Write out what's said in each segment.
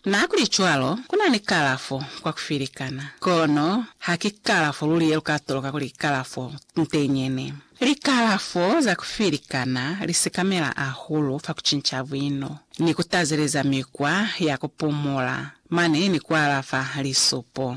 Nahakulicwalo, ku na ni kalafo kwa ku filikana, kono ha ki kalafo luli ye lu ka toloka kuli kalafo ntenyene. Likalafo za ku filikana li sekamela hahulu fa ku cinca buino, ni ku tazeleza mikwa ya ku pumula, mane ni ku alafa lisupo.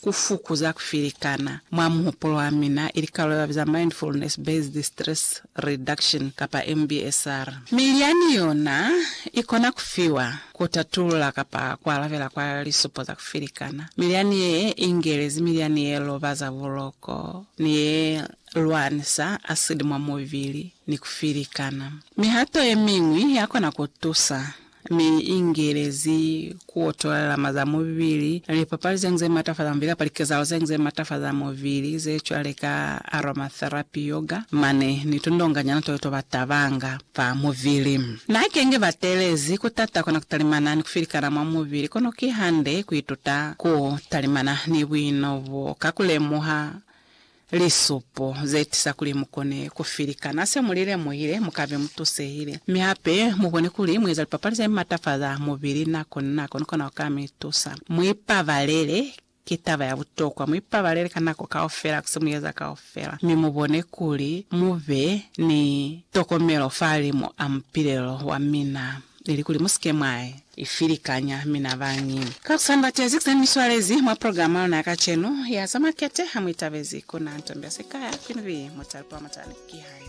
Ku fukuza ku filikana mwa muhupulo wa mina ili karolo ye ba biza Mindfulness Based Stress Reduction kapa MBSR. Milyani yona i kona ku fiwa ku tatulula kapa ku alabela kwa lisupo za ku filikana. Milyani ye ingelezi milyani ye lobaza buloko ni ye lwanisa asidi mwa mubili ni ku filikana. Mihato ye miñwi ya kona ku tusa mi ingelezi ku otola lilama za mubili, lipapali zeñwi ze mata fa za mubili, kapa likezahalo zeñwi ze mata fa za mubili, ze cwale ka aromatherapy, yoga, mane ni tundonga nyana to to ba tabanga fa mubili. Na kenge ba telezi ku tata kona ku talimana ni ku filikana mwa mubili, kono ki hande ku ituta ku talimana ni buino bo ka ku lemuha Lisupo ze tisa kuli mu kone ku filikana se mu li lemuhile, mu ka be mu tusehile, mi hape mu bone kuli mu eza lipapali ze matafaza mubili nako ni nako ni kona ku ka mi tusa. Mu ipabalele, ki taba ya butokwa. Mu ipabalele ka nako kaufela ku se mu eza kaufela, mi mu bone kuli mu be ni tokomelo fa limu a mupilelo wa mina. ilikuli mu si ke mwa i filikanya, mi na bañi. Ka ku sa ni batezi ze mi swalezi mwa programa ya luna ya kacenu ya za makete, ha mu itabezi ku na ntombi ya sikaya, kwini bi mu talipa mwa mutala. Ki hae.